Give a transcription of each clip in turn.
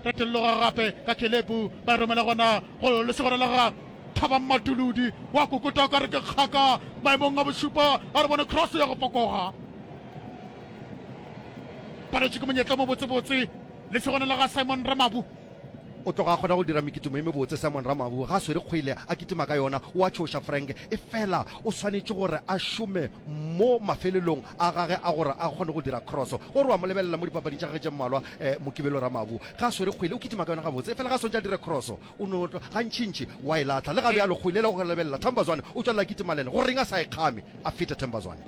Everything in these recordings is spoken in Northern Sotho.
Ka telloga gape ka Kelebu, ba e romela gona go lesogana la ga Thabammatuludi. Wa kukota o ka re ke kgaka maemong a bošupa, a re bone cross ya go fokoga. Paletše ke monyetla mo botsebotse, lesogana la ga Simon Ramabu. O tloga a kgona go dira mekitimo e mebotse Simon Ramabu ga a swere kgwele a kitima ka yona. O a tšhoša Frank efela o swanetše gore a šome mo mafelelong a gage a gore a kgone go dira kroso. Gore wa mo lebelela mo dipapading tša gagwe tše mmalwa, Mokibelo Ramabu ga a swere kgwele, o kitima ka yona gabotse efela ge a swantše a dire kroso o no gantšintši o a e lahla. Le gabjalo kgwele e le go lebelela, Themba Zwane o tšwelela a kitima le ene. Goreng a sa e kgame a fete Themba Zwane?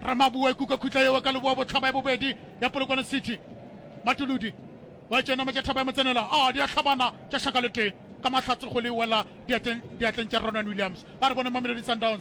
Ramabu wa e kuka khutla yeo ka leboa bohlaba ya bobedi ya Polokwane City. Matuludi wa e tšea nama tša thaba ya motsenela, a di a hlabana tša šaka le tee ka mahlatse kgwele e wela diatleng tša Ronwen Williams. A re bone Mamelodi Sundowns.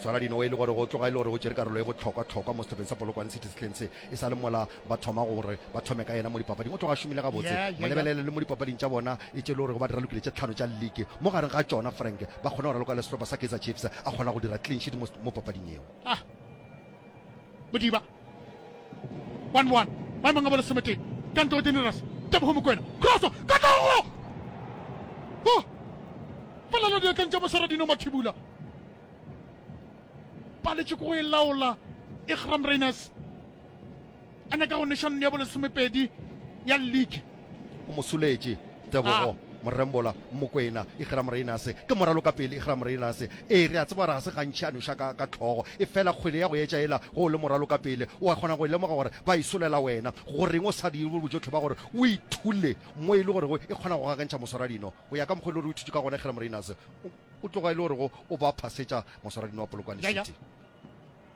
Swara dinowa e le gore go tloga e le gore o tšere karolo e bohlokwa-hlokwa mo sehlopeng sa Polokwane City sehleng se, e sa le mola ba thoma gore ba thome ka yena mo dipapading. O tloga a šomile gabotse, mo lebelele le mo dipapading tša bona e tše e le gore go ba dira lokile tše tlhano tša liki, mo gareng ga tšona Frank ba kgone go raloka le sehlopha sa Kaizer Chiefs, a kgona go dira clean sheet mo papading yeo. one one maemong a bo lesometee ka ntle go generous tebogo mokwena crosso ka tlogo o polelo diatleng tša mosaradino mathibula paletše ko go e laola ikram rainers a nyaka go neša nne ya bo lesomepedi ya league o mo suletše tebogo morembola mokwena ikgera moreinase ke moralo ka pele ikgera moreinase ee re a tseba gore ga se gantšhi a noša ka, ka tlhogo e fela kgwele ya go etša ela go o le moralo ka pele o a kgona go e lemoga gore ba e solela wena goreng o sa dire bojotlhe ba gore o ithule mo e le gorego e kgona go gakantšha moswaradino go ya ka mokgwa e le gore o ithutše ka gona ikgera moreinase o tloga e le gorego o ba phasetša moswaradino wa polokwane city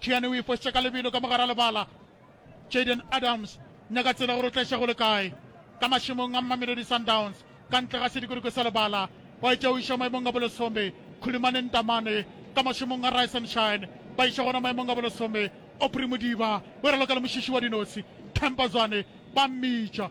Tšhiane o ifošitše ka lebelo ka mogara lebala. Jayden Adams, nyaka tsela gore o tla iša go le kae. Ka mašemong a Mamelodi Sundowns, ka ntle ga sedikoloke sa lebala, wa etša o iša maemong a bolesome. Khulumane Ntamane, ka mašemong a Rise and Shine, ba iša gona maemong a bolesome. Aubrey Modiba, o raloka le mošiši wa dinotshi. Temba Zwane, ba mmitša.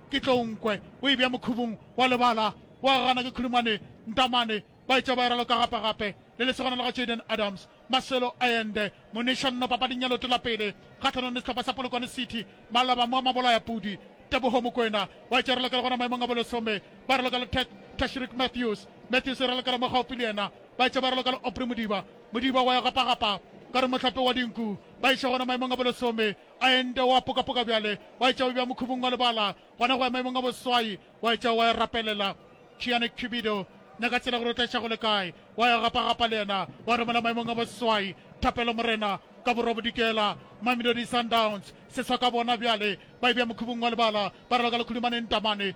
ke tlo nkwe o e bja mokhubung wa lebala wa gagana ke khulumane ntamane ba etša ba eralo ka gape gape le lesogana la ga Jayden Adams Marcelo Allende moneša nno papading ya leoto la pele kgahlanong le sehlopha sa Polokwane City Maloba mo a mabolaya pudi Teboho Mokwena wa etša eralo ka le gona maemong a bolesome ba eralo ka le Ted Tashrik Matthews Matthews eralo ka le mo gaufi le yena ba etša ba eralo ka le Aubrey Modiba Modiba wa ya gapa gapa ka re mohlape wa dinku ba eša gona maemong a bolesome A ende wa pokapoka bjale, wa etša o bja mokhubung wa lebala, gona go ya maemong a boswai, wa etša wa ya rapelela Chiane Cupido, nyaka tsela gore o tla ša go le kae, wa ya gapagapa le yena, wa romela maemong a boswai thapelo, Morena, ka Borwa Bodikela, Mamelodi Sundowns, seswa ka bona bjale, ba e bja mokhubung wa lebala, ba raloka lekhudumaneng tamane.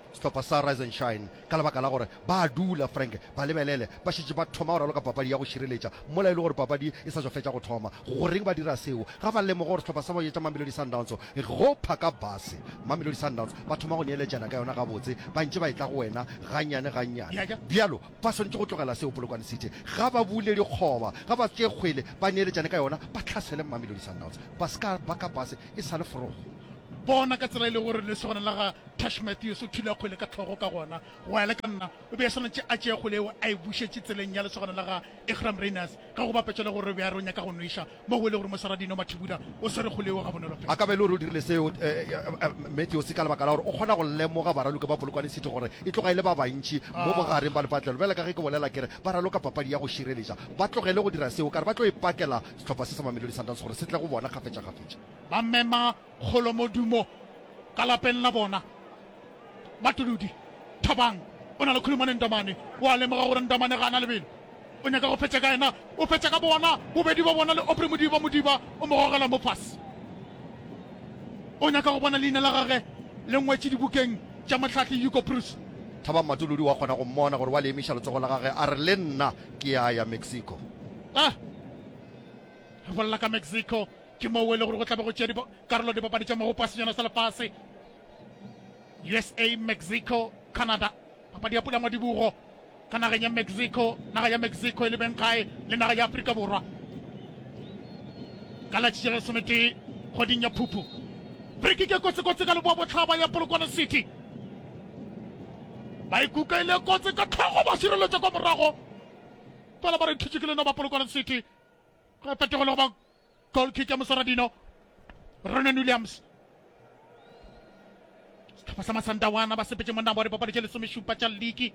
Sehlopha sa Rise and Shine, ka lebaka la gore ba a dula, Frank, ba lebelele, ba šetše ba thoma go raloka papadi ya go šireletša, mola e le gore papadi e sa tšwa fetša go thoma. Goreng ba dira seo? Ga ba lemoge gore sehlopha sa boje tša Mamelodi Sundowns go phaka base? Mamelodi Sundowns ba thoma go neeletšana ka yona gabotse, ba ntše ba e tla go wena gannyane gannyane. Bjalo ba swanetše go tlogela seo. Polokwane City ga ba bule dikgoba, ga ba tšee kgwele, ba neeletšane ka yona, ba tlhasele Mamelodi Sundowns. Ba se ka ba ka base e sa le forogo. Bona ka tsela e le gore lesogana la ga Tash Matthews o thula kgwele ka tlhogo ka gona, go ya le ka nna o be a swanetše a tšee kgwele yeo a e bušetše tseleng ya lesogana la ga Iqraam Rayners, ge go bapetšwa le gore re be a re o nyaka go nweša mo go e le gore mosara Dino Mathibula o swere kgwele yeo gabonolo fela. A ka ba e le gore o dirile seo Matthews ka lebaka la gore o kgona go lemoga baraloki ba Polokwane City gore e tloga e le ba bantši mo bogareng ba lepatlelo. Bjale ka ge ke bolela ke re ba raloka papadi ya go šireletša, ba tlogele go dira seo ka re ba tlo e pakela sehlopha se sa Mamelodi Sundowns gore se tle go bona kgafetšakgafetša. Ba mema kgolo modumo ka lapeng la bona. Matolodi, Thabang o na le khulumane le Ntomane. O a lemoga gore Ntomane ga a na lebelo. O nyaka go fetša ka yena. O fetša ka bona. Bobedi ba bona le Opre Modiba. Modiba o mo gogela mo fase. O nyaka go bona leina la gage le ngwetše dibukeng tša mohlahli Hugo Broos. Thabang Matolodi wa kgona go mmona gore wa le emiša letsogo la gage a re, Le nna ke ya ya Mexico. Ah! Re bolela ka Mexico. ke moo e le gore go tlabe go tšea karolo dipapadi tša magopo a senyana sa lefase usa mexico canada papadi ya pulangwa dibugo ka nageng ya mexico naga ya mexico e lebeng gae le naga ya aforika borwa ka latšhi ya lesometee kgweding ya phuphu friki ke kotsekotse ka leboa botlhaba ya polokwane city ba ikuka ile kotse ka tlhogo ba sireletša kwa morago fela ba re thitšikile no ba polokwane city ge fetego le go ba Goal kick ya Mosoradino. Ronan Williams. Setlhopha sa Masandawana ba sepetse monna wa dipapadi tše lesomešupa tša liki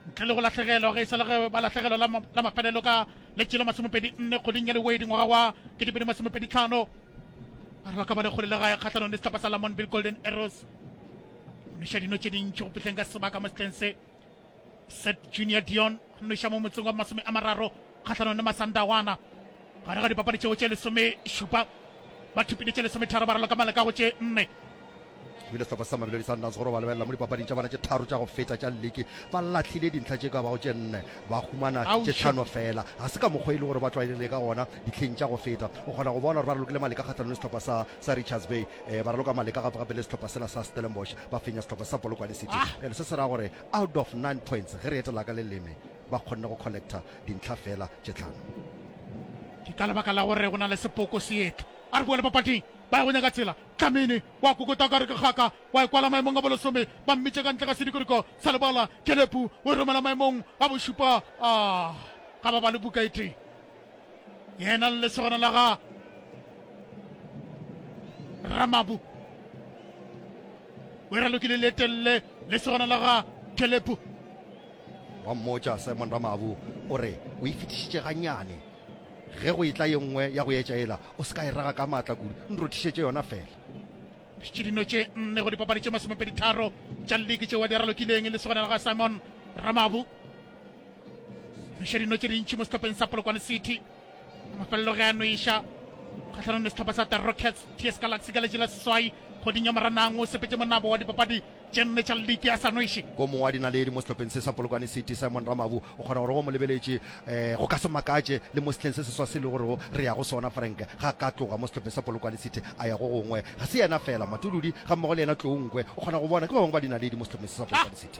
ntle le go lahlegelwa ge e sa le ge ba lahlegelwa la mafelelo ka letše la masomepedi nne kgweding ya lewedi ngwaga wa ketepedi masomepedi tlhano a re ba ka ba le kgole le gae kgatlhanong le setlhopha sa lamonville golden arrows mešadino tše dintši go fitlheng ka sebaka mo setleng se Set Junior Dion nnoša mo motseng wa masome a mararo kgahlanong le Masandawana gare ga dipapadi tšeo tše lesomešupa ba thupile tše lesometharo ba raloka maleka go tše nne ebile sehlopha sa mamelodi sundowns gore ba lebelela mo dipapading tša bona tše tharo tša go feta tša leke ba latlhile dintlha tše ka bago tše nne ba humana tše tlhano fela ga se ka mokgwa e le gore ba tlwaelele ka gona ditlheng tša go feta o kgona go bona gore ba re lokile maleka kgatlhanong le sehlopha sa sa Richards Bay eh, ba raloka maleka gape gape le sehlopha sela sa Stellenbosch ba fenya sehlopha sa Polokwane City ah. and se se ra gore out of 9 points ge re etela ka leleme ba kgonne go collecta dintlha fela tše tlhano ke ka lebaka la gore go na le sepoko seetlo a re boa le papading ba ya go nyaka tsela tlamene wa kokota ka re ke kgaka wa e kwala maemong a bolesome ba mmitše ka ntle ga sedikoriko sa lebala kelepu o e romela maemong a bošupa a ah, ga ba ba le buka e tee yena le lesogana la ga ramabu wera lokile le telele lesogana la ga kelepu wa mmotša simon ramabu o re o e fetišitše ganyane ge go etla ye nngwe ya go etša ela o se ka e raga ka maatla kudu nrothišetše yona fela ke dino tše nne go dipapadi tše masomepedi tharo tša leke tšeo wa di aralokileng le segona la ga simon ramabu iša dino tše dintši mo setopeng sa polokwane city mafelelo ge a no iša kgatlhanong le setlhopha sa the rockets ts galaxy ka letši la seswai kgoding ya moranang o sepetse monabo wa dipapadi tše nne tša leke a sa noše ko mongwe wa dinaledi mo setlhopheng se sa polokwane city simon ramabu o kgona gore go mo lebeletše um go ka se makatše le mo setlheng se seswa se le gorego re ya go sona frank ga ka tloga mo setlhopheng sa polokwane city a ya go gongwe ga se yena fela matuludi ga mmogo le yena tloungwe o kgona go bona ke ba bangwe ba dinaledi mo setlhopheng se sa polokwane city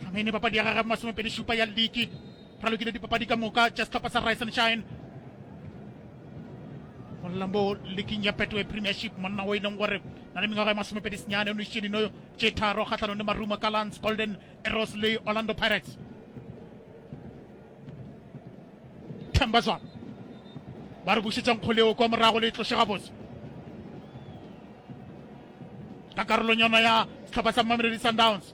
Dlamini papadi ya gagwe masomepedi šupa ya liki ralokile dipapadi ka moka tša sehlopha sa Rise and Shine go lambo liking ya Betway Premiership monna o e leng gore na le mengwaga ya masomepedi senyane o nošitše dino tše tharo kgatlhanong le Marumo Gallants, Golden Arrows le Orlando Pirates. Themba Zwana ba re bušetsa nkgoleo kwa morago le e tloše gabotse ka karolong yona ya sehlopha sa Mamelodi Sundowns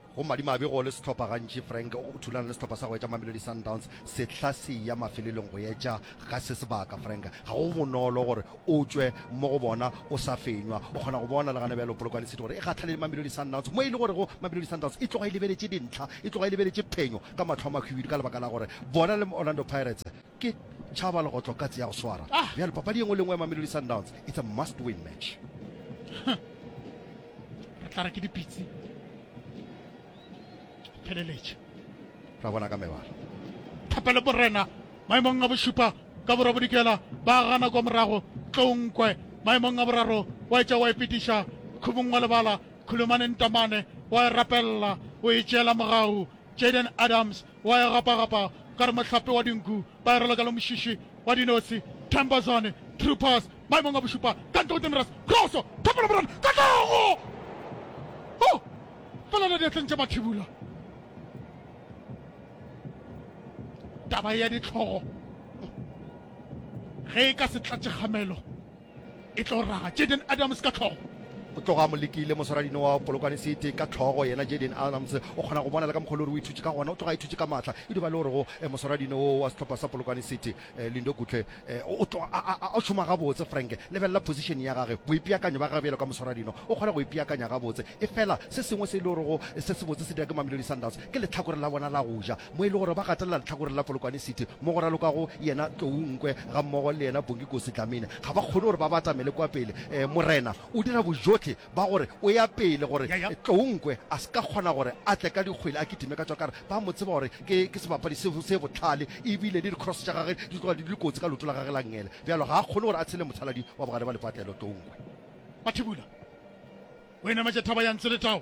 Go madimabe go le sehlopha gantši Frank o thulana le sehlopha sa go etša Mamelodi Sundowns sehla se ya mafelelong go etša ga se sebaka. Frank, ga go bonolo gore o tšwe mo go bona o sa fenywa. O kgona go bona le gana bjalo Polokwane City gore e gahlane le Mamelodi Sundowns mo e le gorego Mamelodi Sundowns e tloga e lebeletše dintlha, e tloga e lebeletše phenyo ka mahlo a mahwibidu ka lebaka la gore bona le Orlando Pirates Ke tšhaba legotlo katse ya go swara. Ah. Bjale papadi ye nngwe le nngwe ya Mamelodi Sundowns, it's a must win match. Re tla re ke dipitsi. Pheleletše. Ra bona ka mebala. Thapelo Morena maemong a bošupa ka borwa bodikela ba gana kwa morago Tlonkwe maemong a boraro wa etša wa ipetiša khumong wa lebala Khulumane Ntamane wa e rapelela o e tšeela mogau Jaden Adams wa ya gapagapa ka re mohlape wa dinku ba erelwa ka lomušiši wa dinosi Themba Zwane Troopers maemong a bošupa ka ntle go Temeras Kroso Thapelo Morena Katlego oh! felela diatleng tša Mathibula taba ya ditlhogo ge e ka se tlatše kgamelo e tlo raga jaden adams ka tlhogo o tloga a mo lekile moswaradino wa polokwane sete ka tlhogo yena jaden adams o kgona go bona le ka mokgolo gore o ithutse ka gona o tloga a ithutse ka maatla e duba le gorego eh, moswaradino wo wa setlhopha sa polokwane sete eh, lindo kutle eh, o tloga a šoma gabotse frank lebelela position ya gage boipeakanyo ba gabjelo ka moswaradino o kgona go ipeakanya gabotse e fela se sengwe se e le gorego se sebotse se dira ke mamelodi sundowns Ke lehlakoreng la bona la go ja, mo e le gore ba gatelela lehlakoreng la Polokwane City, mo go ralokago yena Tlou Nkwe gammogo le yena Bongikosi Dlamini. Ga ba kgone gore ba batamele kwa pele. Morena o dira bojotlhe ba gore o ya pele gore Tlou Nkwe a se ka kgona gore a tle ka dikgwele a kitime ka tšwakare. Ba mo tseba gore ke ke sebapadi se se bohlale e bile le di-cross tša gage di tloga di le kotsi ka leoto la gage la ngele. Bjalo ga a kgone gore a tshele mothaladi wa bogare ba lepatlelo Tlou Nkwe. Mathibula o e nametše thaba ya Ntsoletao.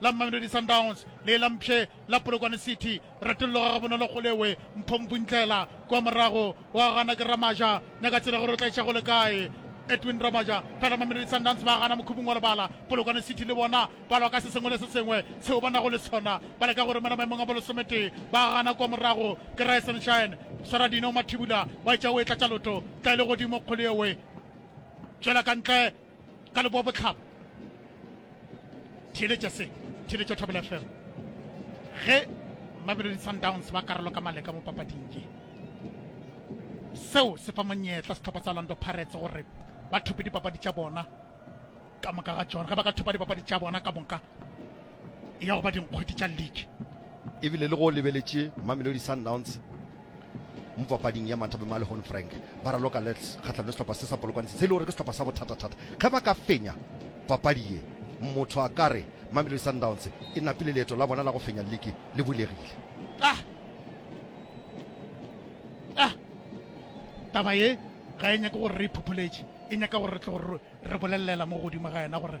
la Mamelodi Sundowns le la Mpshe la Polokwane City. Ratollo ga bonolo go lewe Mpho Mpuntlela kwa morago wa gana ke Ramaja nyaka tsela gore o tla iša go le kae Edwin Ramaja fela Mamelodi Sundowns ba gana mokhubung wa lebala Polokwane City le bona ba lwa ka se sengwe le se sengwe seo ba nago le sona ba leka gore mena maemong a bolosometee ba gana kwa morago ke Rye Sunshine Saradino Mathibula wa itša o e tlatša loto tla e le godimo kgolo ewe tšwela ka ntle ka leboa botlhaba theeletša se theeletša thobela fm ge mamelodi sundowns ba karolo ka maleka mo papading ye seo se fa monyetla setlhopha sa orlando pirates gore ba thope dipapadi tša bona ka moka ga tsona ge ba ka thopa dipapadi tša bona ka moka e ya go ba dinkgwete tša league. Ebile le go lebeletše Mamelodi Sundowns mo papading ya Mathabe Male Hon Frank ba raloka lets kgahlano le sehlopha se sa polokwane se se le gore ke sehlopha sa bothata-thata ge ba ka fenya papadi ye motho a ka re Mamelodi Sundowns e napile leeto la bona la go fenya liki le bulegile ah ah taba ye ga e nyake gore re iphopholetše e nyaka gore re tle gore re bolelela mo godimo ga yena gore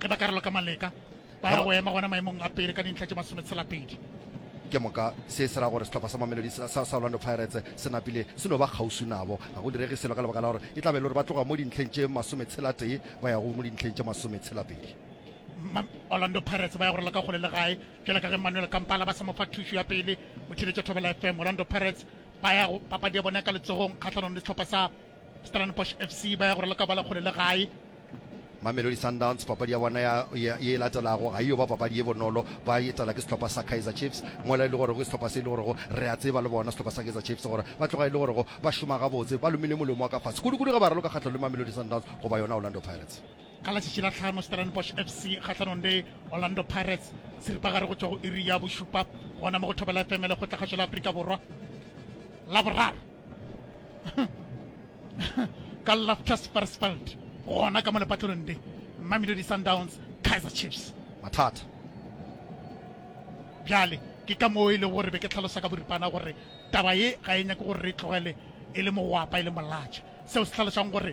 ge ba ka raloka maleka ba ya go ema gona maemong a pele ka dintlha tše masometshela-pedi ke moka se se ra gore sehlopha sa mamelodi sa sa orlando pirates se napile se no ba kgauswi nabo ga go direge selo ka lebaka la gore e tlabe e le gore ba tloga mo dintlheng tše masometshela-tee ba ya go mo dintlheng tše masometshela-pedi orlando pirates ba ya go raloka kgole le gae jale ka ge manuel kampala ba sa mo fa thušo ya pele o thibetše thobela fm orlando pirates ba ya go papadi ya bone ka letsogong kgatlhanong le sehlopha sa Stellenbosch FC ba ya go raloka bala kgole le gae. Mamelodi Sundowns papadi ya bona ya, ya, ye latelago ga iyo ba papadi ye bonolo, ba etela ke sehlopha sa Kaizer Chiefs mola e le gorego ke sehlopha se e le gorego re a tseba le bona sehlopha sa Kaizer Chiefs gore ba tloga e le gorego ba šoma gabotse, ba lomile molemo wa ka fase kudukudu ge ba raloka kgahlano le Mamelodi Sundowns goba yona Orlando Pirates. Ka la tšatši la tlhano Stellenbosch FC kgahlanong le Orlando Pirates seripagare go tšwa go iri ya bošupa gona mo go Thobela FM le kgotlagatšo la Afrika Borwa Laboraro. ka lafta sparsfeld gona ka mo lepatlelong le mamelodi sundowns kaizer chiefs mathata bjale ke ka moo e le gore be ke tlhalosa ka boripana gore taba ye ga e nyake gore re tlogele e le mogwapa e le molatša seo se tlhalosang gore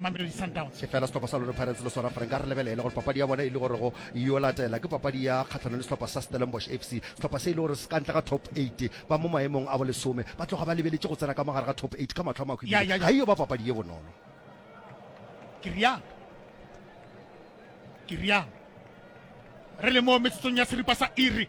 Mamelodi Sundowns. efela sehlopha sa lone pirates le sona fore nka re lebelele gore papadi ya bona e le gore go yo latela ke papadi ya kgatlhanong le sehlopha sa stellenbosch fc sehlopha se e le gore se ka ntle ga top 8 ba mo maemong a bolesome ba tloga ba lebeletše go tsena ka mogare ga top 8 ka matlho a makgo Ya, ya, ebile ya. ga e yo ba papadi ye bonolo ke rialo ke rialo re le mo metsotsong ya seripa sa iri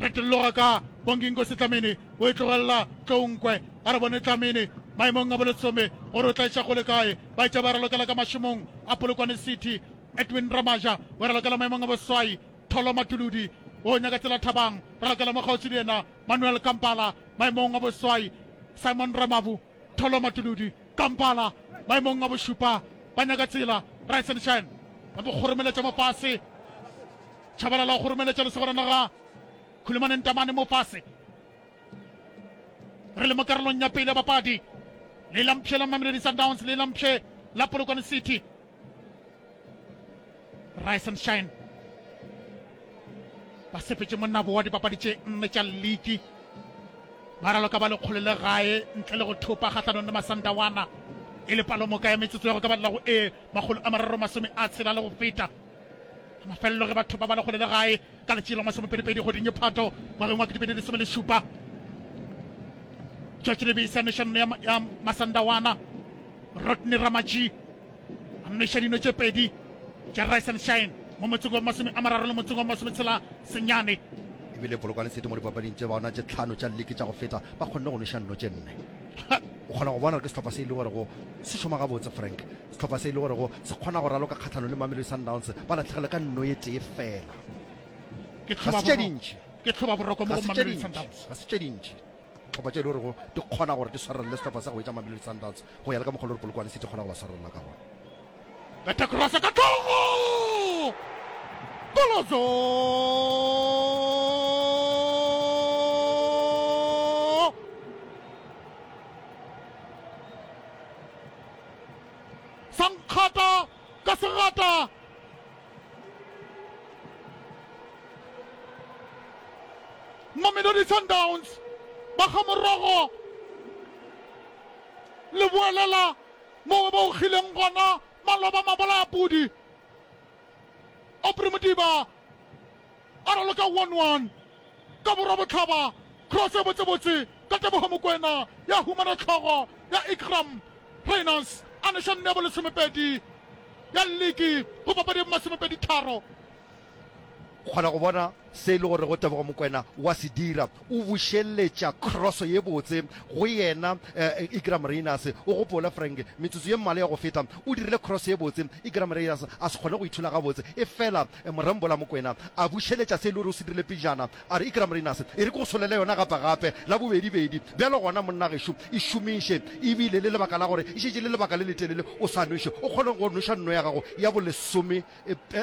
re tloga ka bonginko setlamene o e tlogelela tlounkwe a re bone tlamene maemong a bolesome gore o tlaetša go le kae ba etša ba ralokela ka mašomong a polokwane city edwin ramaja o ralokela maemong a boswai tholo matuludi o nyaka tsela thabang ralokela mo kgauswi le yena manuel kampala maemong a boswai simon ramavu Tholo Matuludi, Kampala, maemong a bošupa, ba nyaka tsela, rise and shine, ba mo kgoromeletša mo fase, Tshabalala o kgoromeletša lesogana la ga Khulumane Ntamane mo fase. Re le mo karolong ya pele ya bapadi, le la mpshe la Mamelodi Sundowns le la mpshe la Polokwane City. rise and shine ba sepetše monnabo wa dipapadi tše nne tša league ba raloka ba lekgolo le gae ntle le go thopa kgahlanong le masandawana e le palomoka ya metsotso ya go ka balela go e makgolo a mararo masome a tshela le go feta mafelelo ge batho ba ba lekgole le gae ka letšee la masomepedipedi goding e phato ngwageng wa ketepedi lesome le šupa tšatši lebisa nešano ya masandawana Rodney Ramatjhi a mmeša dino tše pedi tša Rise and Shine mo motseng wa masome a mararo le motseng wa masome tshela senyane. E bile Polokwane City mo dipapading tše baona tše tlhano tša liki tša go feta ba kgonne go nweša nno tše nne. O kgona go bona gore ke sehlopha se e le gorego se šoma gabotse, Frank. Sehlopha se e le gorego se kgona go raloka kgahlano le Mamelodi Sundowns ba latlhegelwe ka nno ye tee fela. Ke Ga se tše tlhobaboroko dintši. ke tlhobaboroko mo Ga go se tše Mamelodi dintši. Sundowns Ga se tše dintši. Dihlopha tše e le gorego di kgona gore di swarelele sehlopha sa go etša Mamelodi Sundowns go ya le ka mokgwa le gore Polokwane City kgona go ba swarelela ka gona. Bete cross ka thoko! Kolozo! Sankgata ka segata mamelodi sundowns ba ga morogo le boelela moo ba ogileng gona maloba mabolaya pudi opre modiba A raloka one one ka borwa botlhaba, cross e botsebotse ka Teboho Mokoena ya humana tlhogo ya Iqraam Rayners a neša nne ya bolesomepedi ya liki go papadi ya bomasomepedi tharo. Kgona go bona se e le gorego Tebogo Mokoena wa se dira, o bušeletša cross ye botse go yena Iqraam Rayners. O gopole Frank, metsotso ye mmalwa ya go feta o dirile cross ye botse Iqraam Rayners a se kgone go ithola gabotse efela Morembola Mokwena a bušeletša se e le gore o se dirile pejana, a re, Ikram Rayners e re ke go solele yona gapagape, la bobedibedi. Bjalo gona, monna gešo, e šomiše, e bile le lebaka la gore e šetše e le lebaka le letelele o sa nweše, o kgone go nweša nno ya gago ya bolesome,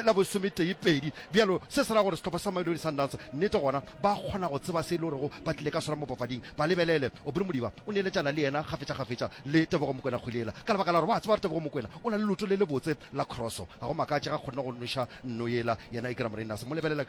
la bolesometee pedi. Bjalo, se se ra gore sehlopha sa Mamelodi Sundowns nnete gona Ba kgona go tseba se e lorego ba tlile ka sona mo papading. Ba lebelele. Aubrey Modiba o neeletšana le yena kgafetšakgafetša le Tebogo Mokwena Kgwilela ka lebaka la gore ba a tseba gore Tebogo Mokwena o na le leoto le lebotse la kroso. Ga go makatše ge a kgonne go noša nno yela yena Igra Morinas. Mo lebelele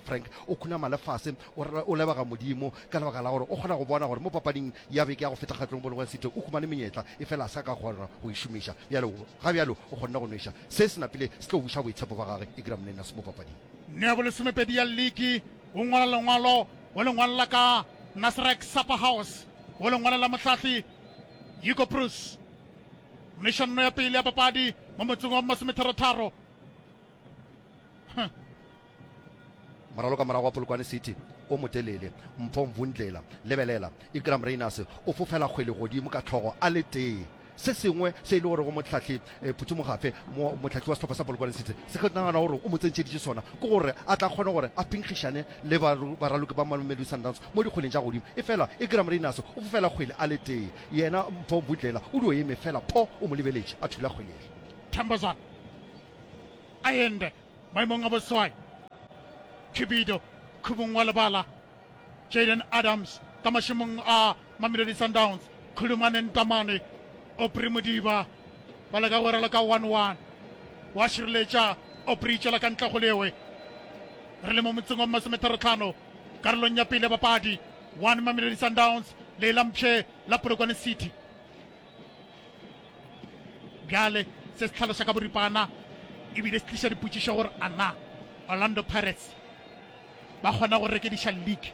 Frank o khunama lefase, o re o lebega Modimo ka lebaka la gore o kgona go bona gore mo papading ya beke ya go feta kgatlong Polokwane City o humane menyetla efela a se a ka kgona go e šomiša. Bjale ga bjalo o kgonne go nweša se se napile se tlo buša boitshepo bja gagwe Igra Morinas mo papading. Nea bolesomepedi ya liki o ngwala lengwalo go lengwalo la ka Nasrec Supper House go lengwalo la mohlahli Hugo Broos. Mešonno ya pele ya papadi mo motseng wa Masometharotharo. Huh. Moralo ka morago wa Polokwane City o motelele. Mpho Mvundlela, lebelela, Ikram Rayners o fofela kgwele godimo ka tlhogo a le tee. Se sengwe se e le gore go Mohlahli eh, Phuthi Mogafe, mo, mohlahli wa sehlopha sa Polokwane City, se ke nagana gore o mo tsentšheditše sona ke gore a tla kgone gore a pinkgišane le ba, baraloki ba Mamelodi Sundowns mo dikgweleng tša godimo. Efela Igram Rayners o fofela kgwele a le tee, yena Mpho Mbudlela o dio eme fela pho, o mo lebeletše a thula kgwele yela. Thambazwana a ende maemong a boswai. Khibido khubung wa lebala. Jayden Adams ka mašemong a Mamelodi Sundowns. Khulumane Ntamane, Opri Modiba ba leka go rela ka one-one. Wa šireletša Opri itšela ka ntle go lewe. Re le mo motseng wa masometharotlhano karolong ya pele ya bapadi one Mamelodi Sundowns le e lampšhe la Polokwane City. Bjale se se tlhaloša ka boripana ebile se tliša dipotšišo gore a na Orlando Pirates ba kgona go rekediša league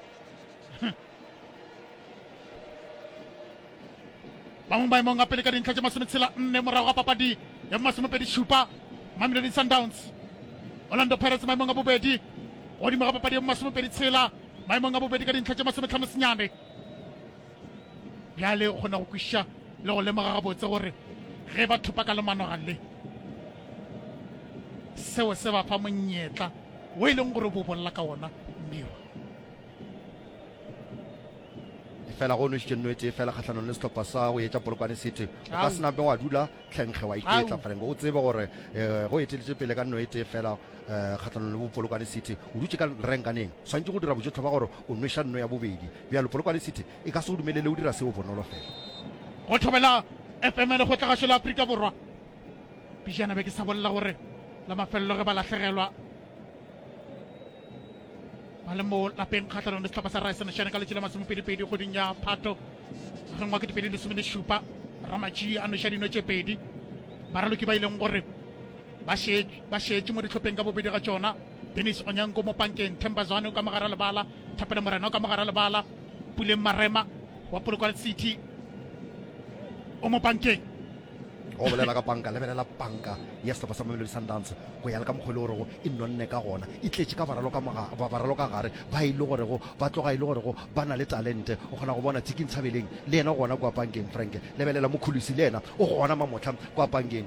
ba mo maemong a pele ka dintlha tše masometshela nne morago ga papadi ya masomepedi šupa mamelodi sundowns orlando pirates maemong a bobedi godimo ga papadi ya masomepedi tshela maemong a bobedi ka dintlha tše masometlhano senyane Bjale o kgona go kwešiša le go lemoga gabotse gore ge ba thopa ka lemanoga le, seo se ba fa monyetla wo e leng gore bo bolela ka wona Mmirwa. fela go nwešitše nno e tee fela kgahlanong le sehlopha sa go etša polokwane city o ka sena be wa dula tlhenkge wa iketla franko o tsebe gore um go eteletše pele ka nno e tee fela um kgahlanong le bopolokwane city o dutše ka renkaneng swanetše go dira bojotlhe ba gore o nweša nno ya bobedi Bjalo, Polokwane City e ka se go dumelele o dira seo bonolo fela. Go thobela FM Lekgotlagašo la Afrika Borwa, pejana be ke sa bolela gore la mafelelo ge ba lahlegelwa ba le mo lapeng kgahlanong le sehlopha sa Raesenešene ka letši la masomepedipedi kgweding ya Phato ngwageng wa ketepedi lesome le šupa, Ramatšie a nweša dino tše pedi baraloki ba e leng gore ba šetše mo dihlopeng ka bobedi ga tšona. Dennis Onyango mo pankeng, Themba Zwane o ka mogara lebala, Thapelo Morena o ka mogara lebala, Puleng Marema wa Polokwane City o mo pankeng. go bolela ka panka lebelela panka ya sehlopha sa mamelodi sundowns go ya le ka mokgwa e le gorego e nonne ka gona e tletše ka baralo ka gare ba e le gorego ba tloga e le gorego ba na le talente o kgona go bona tsiking tshabeleng le yena gona kwa pankeng frank lebelela mokhulusi le yena o gona mamotlha kwa pankeng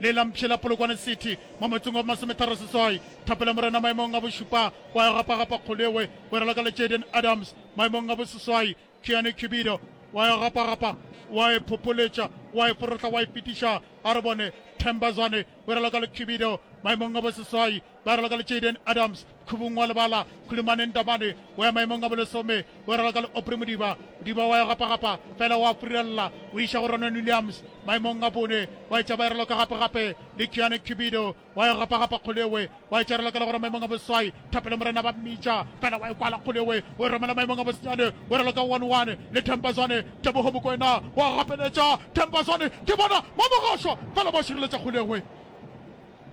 le la Mpšhe la Polokwane City mo motseng wa Bomasometharo Seswai. Thapelo Morena maemong a bošupa, wa ya gapagapa Kgoleoe o raloka le Jayden Adams maemong a boseswai. Keanu Cubido wa ya gapagapa, wa e phopoletša, wa e forohla, wa e fetiša. A re bone Themba Zwane o raloka le Cubido maemong a boseswai. ba raloka le Jayden Adams, Khubung wa lebala, Khulimaneng Ndamane o ya maemong a bolesome, o raloka le Aubrey Modiba, Modiba wa ya gapagapa fela o a furella o iša go Ronwen Williams maemong a bone, wa etša ba e raloka gapegape le Keane Cubido wa ya gapagapa Kgoleoe wa etša e raloka le gona maemong a boswai, Thapelo Morena ba mmitša fela wa e kwala Kgoleoe o e romela maemong a bosenyane, o raloka one one le Themba Zwane, Teboho Mokoena wa gapeletša Themba Zwane ke bona ba mogašwa fela ba šireletša Kgoleoe.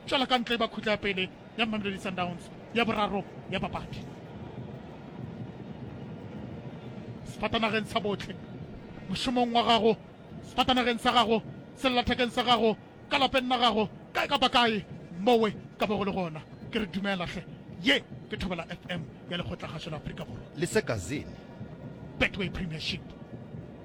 tšwela ka ntle e ba khutla ya pele ya Mamelodi Sundowns ya boraro ya papadi sefatanageng sa botlhe mošomong wa gago sefatanageng sa gago sellathekeng sa gago ka lapeng la gago kae kapa kae mowe ka bo go le gona ke re dumelatlhe ye ke thobela fm ya lekgotlakgašo la aforika borwa le sekazene betway premiership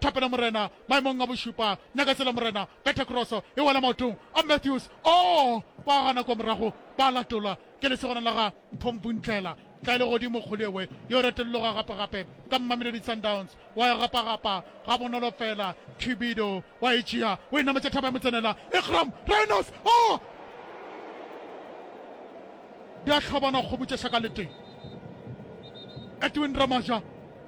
Thapelo Morena, maemong a bošupa, Nyaketsela Morena, Betha Kroso e wela maotong a Matthews, oo ba gana kua morago, ba latolwa ke lesogana la ga Mphomphuntlela, tla e le godimo Kgolewe, yo retologa gape gape ka Mmamelodi Sundowns, wa e gapagapa ga bonolo fela, Khibido wa e tšea, o e nametša thaba ya motsenela, Iqraam Rhinos, oo di a hlobana kgomo tše šaka le tee, Edwin Ramaja,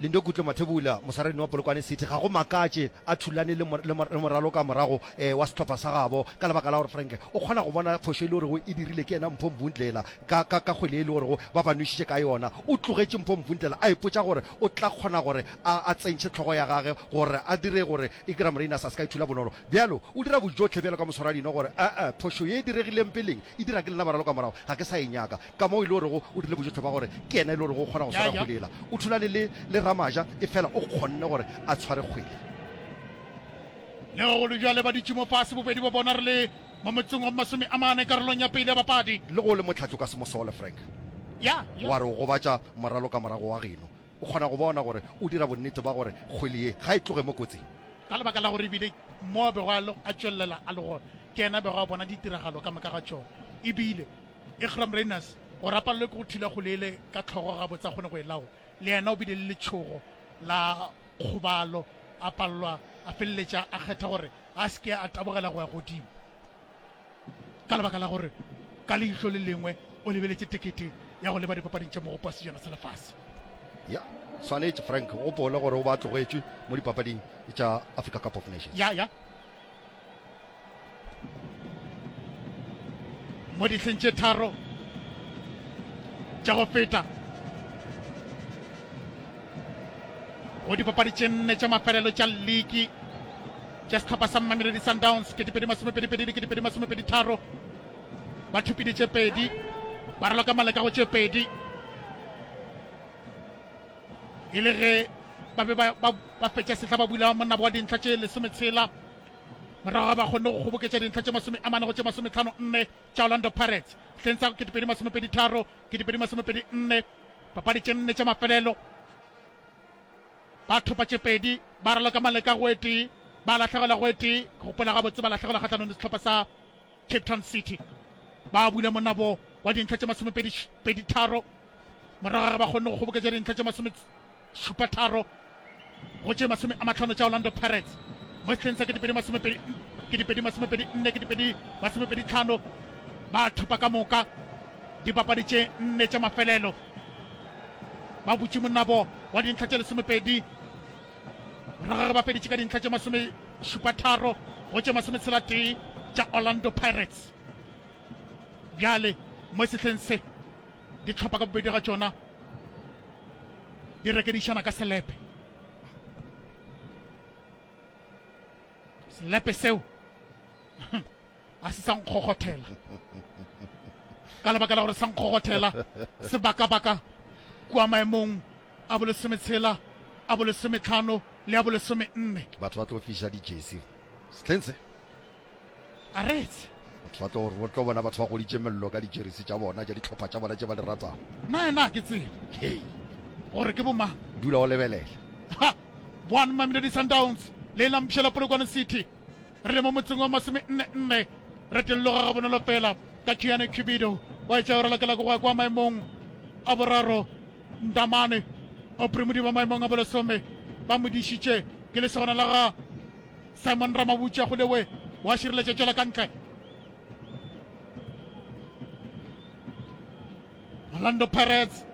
Lindo Gutle Mathebula, mosararena wa Polokwane City, ga go makatše a thulane le, le, le moraloka morago eh, wa sehlopha sa gabo ka lebaka la gore Frank o kgona go bona phošo e le gorego e dirile ke yena Mpho Mbundlela ka, ka, ka kgwele e le gorego ba ba nwešitše ka yona. O tlogetše Mpho Mbundlela a ipotša gore o tla kgona gore a, a tsentšhe tlhogo ya gage gore a dire gore Igram Rayners a se ka e thula bonolo. Bjalo o dira bojohle bjalo ka moswarareno gore, A-a, phošo ye e diregileng peleng e dira ke lena baraloka morago ga ke sa e nyaka. Ka moo e le orego o dule bojohle bwa gore ke yena e le orego o kgona go swara kgwele yela. O thulane le le Ramaja efela o kgonne gore a tshware kgwele. Le ge go le bjale ba dutše mo fase bobedi bja bona re le mo motseng wa masome a mane karolong ya pele ya bapadi. Le ge o le motlhatli o ka se mo sole Frank wa re o gobatša moralo ka morago wa geno. O kgona go bona gore o dira bonnete bwa gore kgwele ye ga e tloge mo kotsing. Ka lebaka la gore e bile mo a bego a tšwelela a le gona ke yena a bego a bona ditiragalo ka moka ga tšona e bile Iqraam Rayners o rapalelwe ke go thula kgole yele ka tlhogo gabotse a kgone go e lawo. Le yena o bile le letšhogo la kgobalo, a palelwa a feleletša a kgetha gore a se ke a tabogela go ya godimo ka lebaka la gore ka leihlo le lengwe o lebeletše tekete ya go leba dipapading tša mogopo wa sejana sa lefase. ya swanetše frank o gopola gore o ba tlogetšwe mo dipapading tša africa cup of nations ya ya mo dihleng tše tharo tša go feta go dipapadi tše nne tša mafelelo tša liki tša setlhopha sa mmameledi sundowns ke dipedi masomepedipedi le ke dipedi masomepedi tharo ba thupile tše pedi ba raloka maleka go tše pedi e le ge ba be ba fetša sehla ba bula monabo wa dintlha tše lesometshela morago ga ba kgonne go kgoboketša dintlha tše masome a mane go tše masometlhano nne tša orlando pirates hleng sa ketepedi masomepedi tharo ketepedi masomepedi nne papadi tše nne tša mafelelo ba thopa tše pedi ba raloka maleka go etee ba latlhegelwa go etee go gopola gabotse ba latlhegelwa kgatlhanong le setlhopha sa Cape Town City ba bula monabo wa dintlha tše masomepedi pedi tharo morago ga ge ba kgonne go kgoboketša dintlha tše masome šupa tharo go tše masome a matlhano tša orlando pirates mo setlheng sa kedipedi masomepedi kedipedi masomepedi nne kedipedi masomepedi tlhano ba thopa ka moka dipapadi tše nne tša mafelelo ba butše monabo wa dintlha tše lesomepedi Morago ga ba feditše ka dintlha tše masomešupatharo go tše masometshela-tee tša Orlando Pirates, bjale mo sehleng se dihlopha ka bobedi ga tšona di rekedišana ka selepe. Selepe seo a se sa nkgokgothela ka lebaka la gore sa nkgokgothela sebaka-baka kua maemong a bolesometshela a bolesometlhano le a bolesome nne batho ba tlo fiša dijesi setlheng se a retse batho ba tlo gore botlo bona batho ba goditše mello ka dijerisi tša bona tša ditlhopha tša bona tše ba di ratago na ena ke tsebe gore ke bomang dula o lebelela one mamelodi sundowns le e lampšhela polokwane city Re le mo motseng wa masomenne-nne, re tolloga gabonolo fela ka Chiane Cubido wa etša yora lokela go gwa kwa maemong a boraro. Ndamane Opremudi ba maemong a bolesome ba mo dišitše ke lesogana la ga Simon Ramabutša go lewe wa šireletša tšwela ka ntle. Orlando Pirates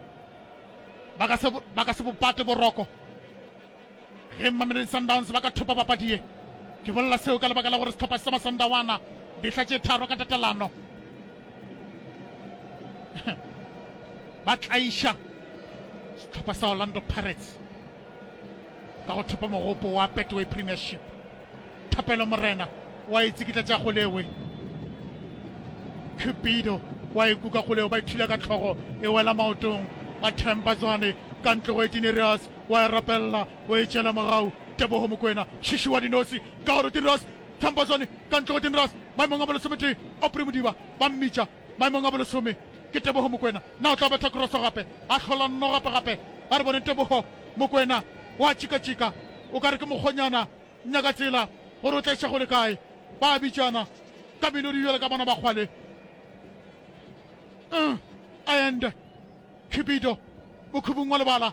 ba ka se bopate boroko. Ge Mamelodi Sundowns ba ka thopa papadi ye, ke bolela seo ka lebaka la gore sehlopha sa Masandawana dihla tše tharo ka tatelano ba tlaiša sehlopha sa Orlando Pirates ka go thopa mogopo wa Betway Premiership. Thapelo Morena wa e tsikitla tša golewe, Cupido wa e kuka golewe, ba ithula ka tlhogo e wela maotong a Themba Zwane ka ntlogo e Tinerios wa e rapelela, o e tšeela morago. Tebogo Mokwena, Šiši wa Dinotsi, Kaoro Tinras, Tlhampho Zwane, Kantlogo Tinras, maemong a bolesometee, Opri Modiba, ba mmitša, maemong a bolesome, ke Tebogo Mokwena, na o tla betha kroso gape? A hlola nno gape gape, a re boneng Tebogo Mokwena, o a tšikatšika, o ka re ke mokgonyana, nyaka tsela gore o tla iša go le kae. Ba a bitšana ka melodi bjale ka bona ba kgwale. Uh, a ende, Khibido, mokhubung wa lebala.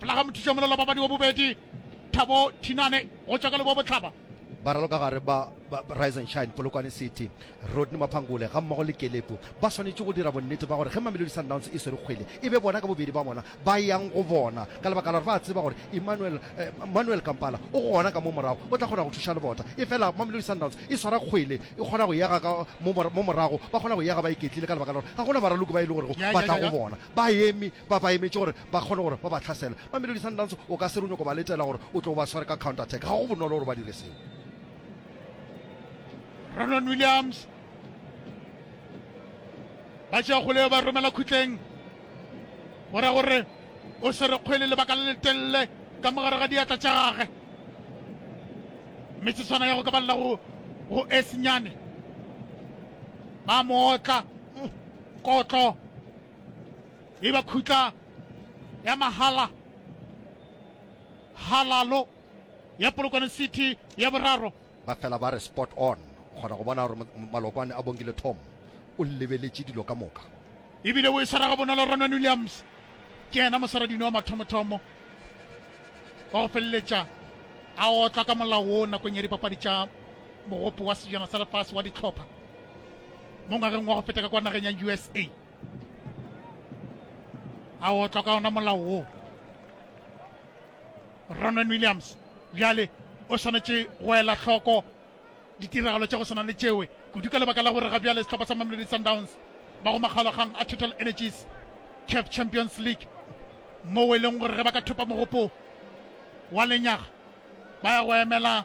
fela ga mothuša molelo babadi wa bobedi thabo thinane go tšwa ka leboa botlhaba ba raloka gare ba rise and shine polokwane city rodney maphangole ga mmogo le kelepo ba swanetše go dira bonnete ba gore ge mamelodi sundowns e swere kgwele e be bona ka bobedi ba bona ba yang go bona ka lebaka la gore ba tseba gore emmanuel eh, manuel kampala o gona ka mo morago o tla kgona go thuša lebota e fela mamelodi sundowns e swara kgwele e kgona go yega ka mo morago ba kgona go yega ba iketlile ka lebaka la gore ga gona baraloki ba e le gore ba tla go bona Baemi ba ba emetše gore ba kgone gore ba ba hlasele. Mamelodi Sundowns o ka se re o nyoko ba letela gore o tlo o ba sware ka counter attack. Ga go bonolo gore ba dire seo. Ronwen Williams ba tšea kgoleo ba romela khutleng go ra gore o swere kgwele lebaka le letelele ka mogare ga diatla tša gage metsetswana ya go ka balela go go esnyane ba mootla Kotlo e ba khutla ya mahala halalo ya Polokwane City ya boraro. Ba fela ba re spot on. O kgona go bona gore Malokwane a Bongile Tom o lebeletše dilo ka moka. E bile o e swara ga bonolo Ronwen Williams. Ke yena moswaradino wa mathomothomo wa go feleletša a otla ka molao wo nakong ya dipapadi tša mogopo wa sejana sa lefase wa ditlhopha. mo ngwageng wa go feta ka kwa nageng ya usa a otlwa ka ona molao wo ronan williams bjale o swanetše go ela hloko ditiragalo tša go swana le tšewe kudu ka lebaka la gore ga bjale sehlopha sa mamelodi sundowns ba go makgalogang a total energies cap champions league moo e leng gore ge ba ka thopa mogopo wa lenyaga ba ya go emela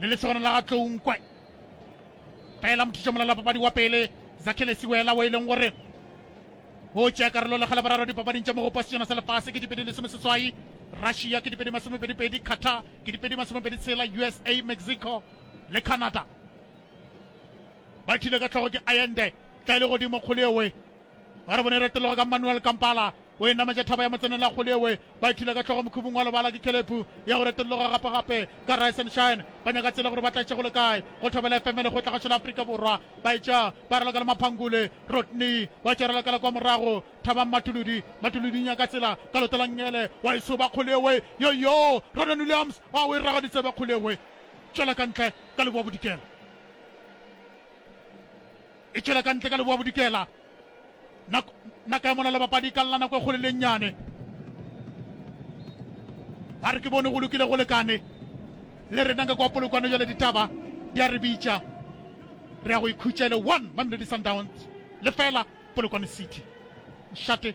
le lesogana la ga tlounkwe kaela mothiša molala papadi wa pele zakhele siwela o e leng gore o tšea karolo le kgale bararo dipapading tša mogopo sejana sa lefase ke dipedi lesome seswai russia ke dipedi masomepedipedi qatar ke dipedi masomepedi tshela usa mexico le canada ba thile ka tlhogo ke ayende tla e le godimo kgolo ewe Ba re bone retelogo ka Manuel Kampala o e nametša thaba ya motsenela kgole ewe ba ithula ka hlogo mokhubung wa lebala ke khelephu ya go reteloga gape-gape ka Rise and Shine ba nyaka tsela gore ba tlatše go le kae go thobela FM le kgotlagatšo la Afrika Borwa ba etša ba raloka le maphangule Rodney wa tša ralokela kwa morago thabang matuludi matuludi nyaka tsela ka loto la ngele wa e soba kgole ewe yo yo Ronan Williams wa o e raga ditsebe kgole ewe tšwela ka ntle ka leboa bodikela E tšwela ka ntle ka Leboabodikela. Nako, nako ya molalo bapadi ka lla nako e kgole le nnyane. Ba re ke bone go lokile go lekane. Le rena ka kwa polokwane jale ditaba di a re bitša. Re ya go ikhutša e le one Mamelodi Sundowns lefela Polokwane City. Nšate.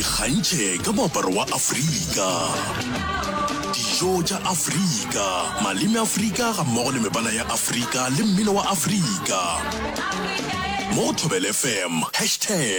Ikgantšhe ka moaparo wa Afrika, dijo tša Afrika, maleme a Afrika gammogo le mebala ya Afrika le mmino wa Afrika mo go Thobela FM, hashtag.